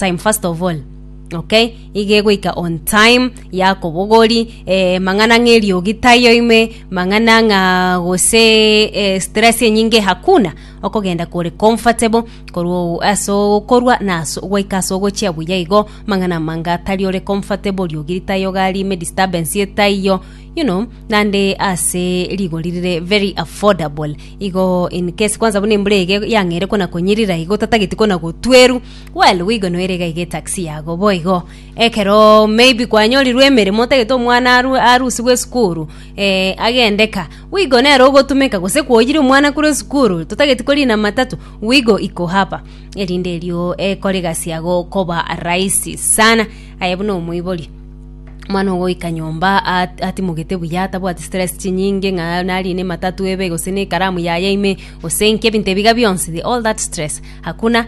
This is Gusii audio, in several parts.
time first of all okay iga egoika on time yakobogori eh, mang'ana ng'a eriogi tayo ime mang'ana ng'a gose eh, stress enyinge hakuna okogenda kore comfortable korwa o- ase okorwa na ase gwaika ase ogochia buya igo mang'ana manga tari ore comfortable riogi ritayo gari ime disturbance etaiyo you know nande ase rigori rire very affordable igo in case kwansa buna embura ege yang'eire kona konyirira igo tatageti kona gotweru Well wigo noire iga iga etaxi yago boigo ekero maybe kwanyorirwe emeremo otagete omwana aru arusigwe esukuru eh, agende ka wigo nere ogotumeka gose kwoyire omwana kure esukuru totageti korina matatu wigo iko hapa erinde erio ekore egasi yago koba rahisi sana aye buna omoibori omwana ogoika nyomba at- atimogete buya atabwati stress chinyinge ng'a narine matatu ebe gose nekaramu yaye ime gose nki ebinto ebiga bionsi the all that stress hakuna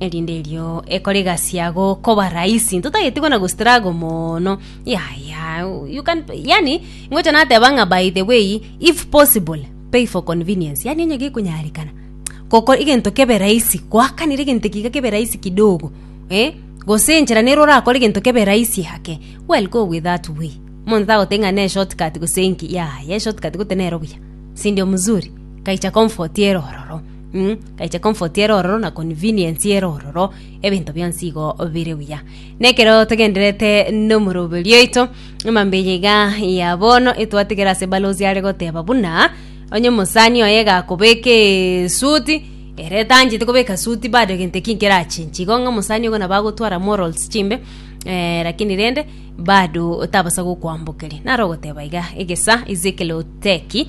erinde erio ekore egasi yago koba rahisi ntotageti kona gostrago mono yaya you can yani ingocha nateba ng'a by the way if possible pay for convenience yani onye gekonyarekana goko egento kebe rahisi goakanera egento eke iga kebe rahisi kidogo eh gose enchera nere orakore egento kebe rahisi ake well go with that way monto tagoteba ng'a ne short cut gose enki yaya eshort cut goteba nero buya sindio mzuri kaicha comfort ere ororo. Gaiche comfort ere ororo na convenience ere ororo ebinto bionsi igo bire buya na ekero togenderete nomoroberi oito emambe eye iga ya bono etwatigera ase balozi are goteba buna onye omosani oye gakobeka esuti ere tanchete kobeka suti bado egento ekio nkerachinche igo ng'a omosani ogo nabo agotwara morals chimbe eh, lakini rende bado tabasa gokoambokeria naro ogoteba iga egesa Ezekiel Oteki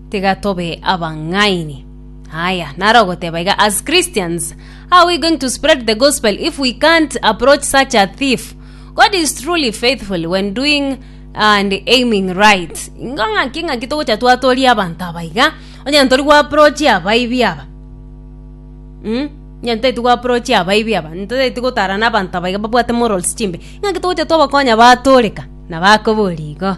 Tiga tobe abang'aini. Aya, naro ogoteba iga, as Christians, how are we going to spread the gospel if we can't approach such a thief? God is truly faithful when doing and aiming right. Ingo ng'aki ng'aki togocha twatoria abanto aba iga, onye ntori gwaprochi abaibi aba. Mm? Onye ntaiti gwaprochi abaibi aba, ntaiti gotarana abanto aba iga babwate morals chimbe. Ng'aki togocha twabakonya batoreka na bakobori igo.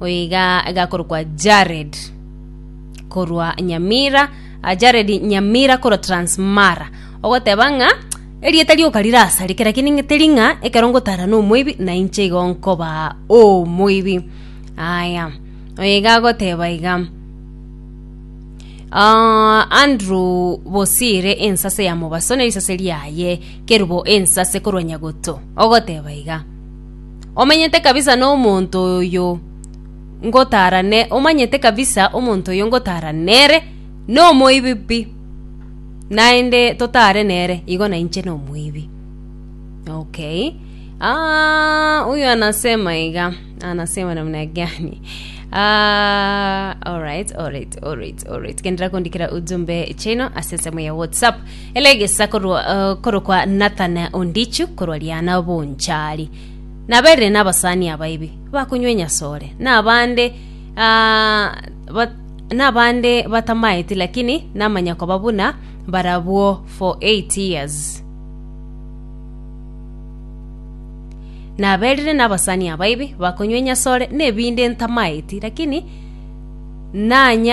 oyo iga igakorokwa Jared korwa Nyamira ah, Jared Nyamira korwa Transmara ogoteba ng'a erieta rioka rirasareke lakini ng'e teri ng'a ekero ngotara na omoibi na inche igo nkoba omoibi aya oyo iga agoteba iga Ah, Andrew Bosire ensase ya mobaso ne risase riaye kerubo ensase korwa Nyagoto ogoteba iga Omenyete kabisa nomonto oyo ngotaara ne... Omanyete kabisa omonto oyo ngotaara nere nomoibi pi, naende totaare nere igo nainche nomoibi. Okay. Aah, huyu anasema iga, anasema namna gani? Ah, alright, alright, alright, alright. Kendera kondikira ujumbe chino ase ensemo ya WhatsApp. Elegesa korwa, eh, korokwa Nathan Ondichu korwa Riana Bonchari. Naberire n'abasani abaibi bakonywa enyasore, nabande ah, ba, nabande batamaeti lakini namanya koba buna barabwo for 8 years. Naberire n'abasani abaibi bakonywa enyasore nebinde ntamaeti lakini nanya